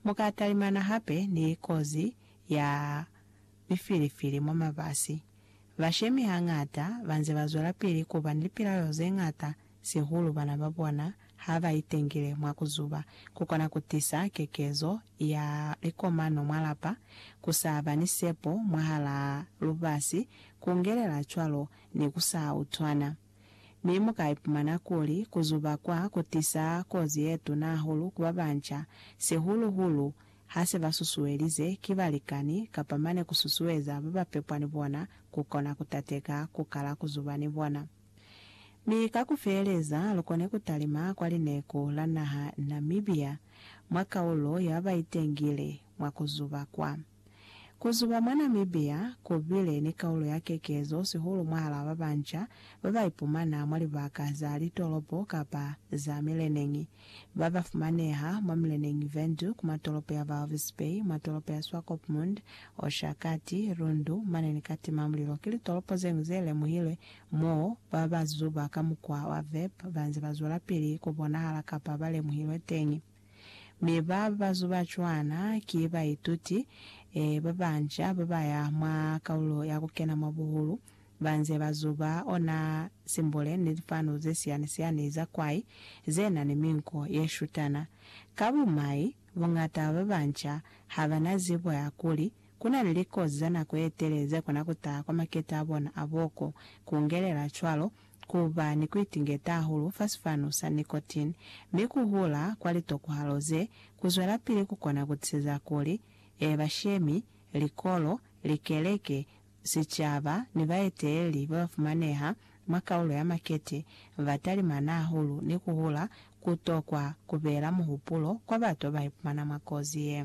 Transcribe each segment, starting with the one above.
Mu ka talimana hape ni kozi ya mifilifili mwa mabasi. Bashemi hañata ba nze ba zwelapili ku ba ni lipilaelo ze ñata sihulu bana ba bona ha ba itengile mwa ku zuba. Ku kona ku tisa kekezo ya likomano mwa lapa, ku sa ba ni sepo mwahalaa lubasi, ku ngelela cwalo ni ku sa utwana. Mi mu ka ipumana kuli ku zuba kwa ku tisa kozi ye tuna hahulu ku ba banca, sihulu-hulu ha se ba susuelize ki balikani kapa mane ku susueza ba ba pepwa ni bona ku kona ku tateka ku kala ku zuba ni bona. Mi ka ku feeleza, lu kone ku talima kwa lineku la naha Namibia mwa kaulo ya ba ba itengile mwa ku zuba kwa. Ku zuba mwa Namibia ku bile ni kaulo ya kekezo sihulu mwahalaa ba banca ba ba ipumana mwa libaka za litolopo kapa za mileneñi, ba ba fumaneha mwa mileneñi Windhoek, mwa tolopo ya Walvis Bay, mwa tolopo ya Swakopmund, Oshakati, Rundu, mane ni Katimamulilo. Ki litolopo ze ñwi ze lemuhilwe mo ba ba zuba ka mukwa wa vape ba nze ba zwelapili ku bonahala kapa ba lemuhilwe teñi. Mi ba ba zuba cwana ki baituti ba banca ba ba ya mwa Kaulo ya ku Kena mwa Buhulu, ba nze ba zuba ona simbule ni lifanu ze siyani-siyani za kwai ze na ni minko ye shutana. Ka bumai, buñata ba banca ha ba na zibo ya kuli ku na ni likozi za nako ye tele ze kona ku taha kwa makete a bona a boko, ku ngelela cwalo ku ba ni ku itingeta hahulu fa sifanu sa nicotine, mi ku hula kwa litokuhalo ze, ku zwelapili ku kona ku tiseza kuli, e, bashemi, likolo, likeleke, sicaba, ni baeteleli ba ba fumaneha mwa kaulo ya makete ba talimana hahulu ni ku hula ku tokwa ku bela muhupulo kwa bato ba ipumana mwa kozi ye.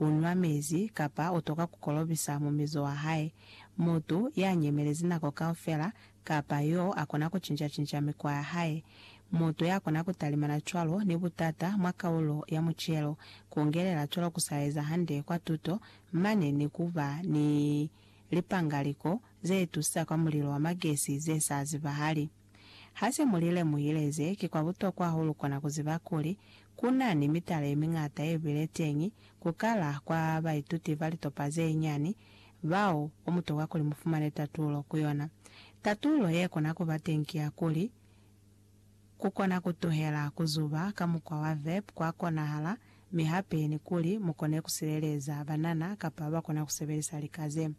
unwa mezi, kapa utoka kukolobisa mumizo wahae. Mutu yanyemelezi nako kaufela, kapa yo akona kucinca-cinca mikwa yahae. Mutu yakona kutalimana cwalo ni butata mwa kaulo ya mucelo, kungelela cwalo kusaeza hande kwa tuto, mane ni kuba ni lipangaliko zetusisa kwa mulilo wa magesi zesazibahali. Ha se mu li lemuhilezi, ki kwa butokwa hahulu kona ku ziba kuli, ku na ni mitala ye miñata ye bile teñi, ku kala kwa baituti ba litopa ze nyani, bao ku mutokwa kuli mu fumane tatulo ku yona. Tatulo ye kona ku ba teñi ki ya kuli, Ku kona ku tuhela ku zuba ka mukwa wa vep kwa konahala, mi hape ni kuli mu kone ku sileleza banana kapa ba kona ku sebelisa lika ze.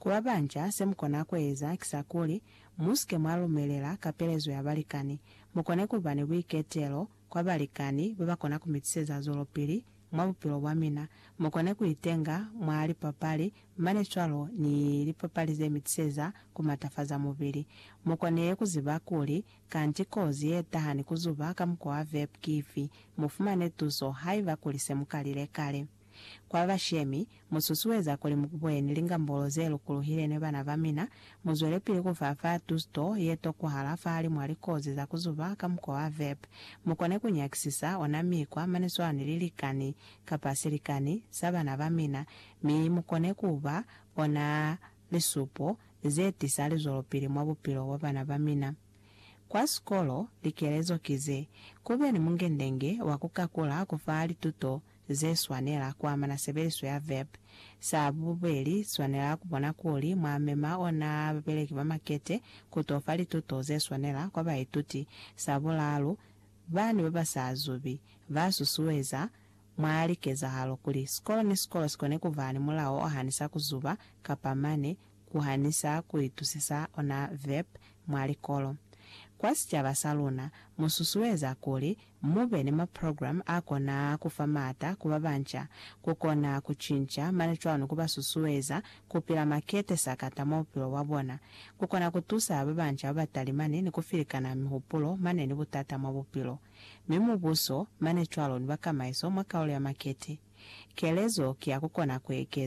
Ku babanja, se mu kona ku eza ki sa kuli, Musike mwa lumelela kapelezo ya balikani. Mukone kuba ni buiketelo kwa balikani babakona kumitiseza zwelopili mwa bupilo bwa mina. Mukone kuitenga mwa lipapali mane cwalo ni lipapali zemitiseza kumatafaza mubili. Mukone kuziba kuli kanti kozi yetaha ni kuzuba ka mukwa wa vape kifi. Mufumane tuso haiba kuli semukalile kale. Kwa bashemi, mu susueza kuli mu kuboheni lingambolo ze lukuluhile ni bana ba mina, mu zwelepili ku fa fa tuto ye tokwahala fahalimw'a likozi za ku zuba ka mukwa wa vep, mu kone ku nyakisisa ona mikwa mane swana ni lilikani, kapa silikani, sa bana ba mina, mi mu kone ku ba ona lisupo ze tisa lizwelopili mwa bupilo bwa bana ba mina. Kwa sikolo, likelezo ki ze, Ku be ni mungendenge wa ku kakula ku fa lituto ze swanela ku amana sebeliso ya verb. Sa bubeli, swanela ku bona kuli mwa mema ona babeleki ba makete ku to fa lituto ze swanela kwa baituti. Sa bulalu, bani ba ba sa zubi ba susueza mwa likezahalo kuli sikolo ni sikolo si kone ku ba ni mulao o hanisa ku zuba kapa mane ku hanisa ku itusisa ona verb mwa likolo. Kwa sicaba sa luna, mu susueza kuli Mube ni maprogram a kona kufa maata ku babanca, ku kona ku cinca mane cwanu ku ba susueza ku pila makete sakata mwa bupilo bwa bona, ku kona ku tusa babanca ba ba talimani ni ku filikana mihupulo mane ni butata mwa bupilo. Mi Mubuso, mane cwalo ni bakamaiso mwa kaulo ya makete. Kelezo ki ya ku kona ku ekeza.